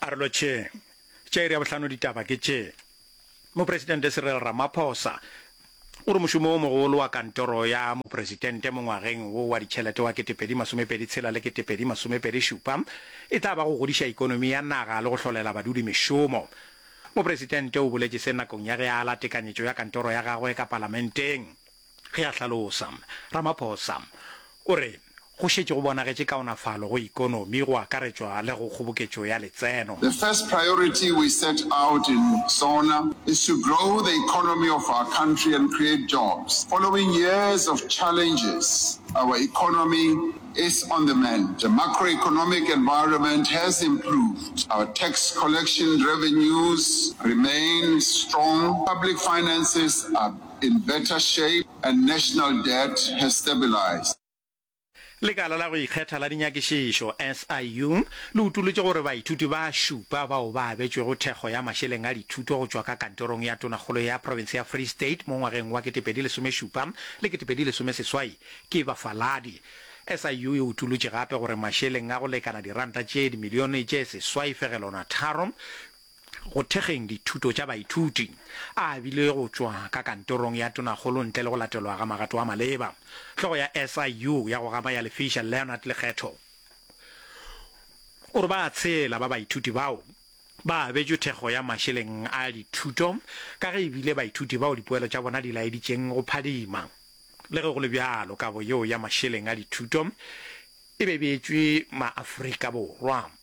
Arelo tše tša iri ya bohlano ditaba ke tše. Mopresidente Cyril Ramaphosa o re mošomo wo mogolo wa kantoro ya mopresidente mo ngwageng wo wa ditšhelete wa 2026 le 2027 e tla ba go godiša ikonomi ya naga le go hlolela badudi mešomo. Mopresidente o boletše se nakong ya ge a ala tekanyetšo ya kantoro ya gagwe ka palamenteng. Ge a hlalosa, Ramaphosa o re go šetše go bonagetše kaonafalo go ikonomi go akaretšwa le go kgoboketšo ya letseno. The first priority we set out in SONA is to grow the economy of our country and create jobs. Following years of challenges, our economy is on the mend. The macroeconomic environment has improved. Our tax collection revenues remain strong. Public finances are. in better shape and national debt has stabilised. Lekala la go Ikgetha la Dinyakišišo, SIU, le utolotše gore baithuti ba šupa bao ba abetšwego thekgo ya mašeleng a dithuto go tšwa ka Kantorong ya Tonakgolo ya Profense ya Free State mo ngwageng wa 2017 le 2018 ke bafaladi. SIU e utolotše gape gore mašeleng a go lekana diranta tše dimilione tše seswai fegelwana tharo go thekgeng dithuto tša baithuti, a abilwe go tšwa ka kantorong ya tonakgolo ntle le go latelwa ga magato a maleba. Hlogo ya SIU ya go gapa ya Lefiša, Leonard Lekgetho, o re ba tshela ba baithuti bao ba abetšwe thekgo ya mašeleng a dithuto ka ge e bile baithuti bao dipoelo tša bona di laeditšeng go phadima. Le ge go le bjalo, kabo yeo ya mašeleng a dithuto e be e beetšwe ma-Afrika Borwa.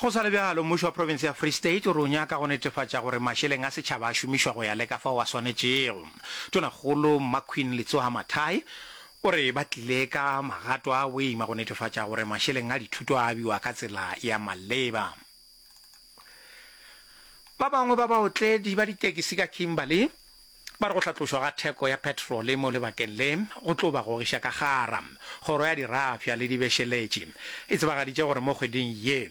Go sa le bjalo, mmušo wa profense ya Free State o re o nyaka go netefatša gore mašeleng a setšhaba a šomišwa go ya le ka fao a swanetšego. Tonakgolo Mmaqueen Letsoha-Mathae o re ba tlile ka magato a boima go netefatša gore mašeleng a dithuto a abiwa ka tsela ya maleba. Ba bangwe ba baotledi ba ditekisi ka Kimberley Ba re go hlatlošwa ga theko ya petrole mo lebakeng le go tlo ba gogiša ka gara. Kgoro ya Dirafša le Dibešeletši e tsebagaditše gore mo kgweding ye,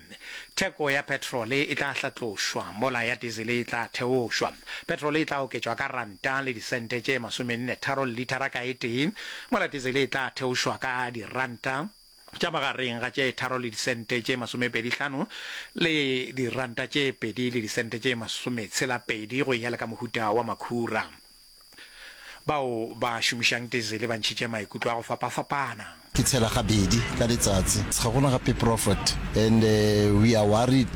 theko ya petrole e tla hlatlošwa mola ya dizele e tla theošwa. Petrole e tla oketšwa ka ranta le disente tše masomenne tharo lithara ka e tee, mola dizele e tla theošwa ka diranta tša magareng ga tše tharo le disente tše masomepedi hlano le diranta tše pedi le disente tše masometshela-pedi go ya le ka mohuta wa makhura. Bao ba šomišang dizele ba ntšhitše maikutlo a go fapafapana. Ke tshela gabedi ka letsatsi. Ga gona gape prophet and we are worried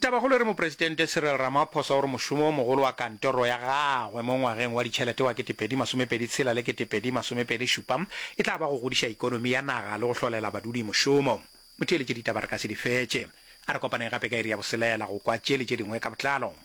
Tabakgolo e re Mopresidente Cyril Ramaphosa o re mošomo o mogolo wa kantoro ya gagwe mo ngwageng wa ditšhelete wa ketepedi masomepedi tshela le ketepedi masomepedi šupa e tla ba go godiša ikonomi ya naga le go hlolela badudi mošomo. Motheeletše ditaba re ka se di fetše. A re kopaneng gape ka iri ya boselela go kwa tše le tše dingwe ka botlalo.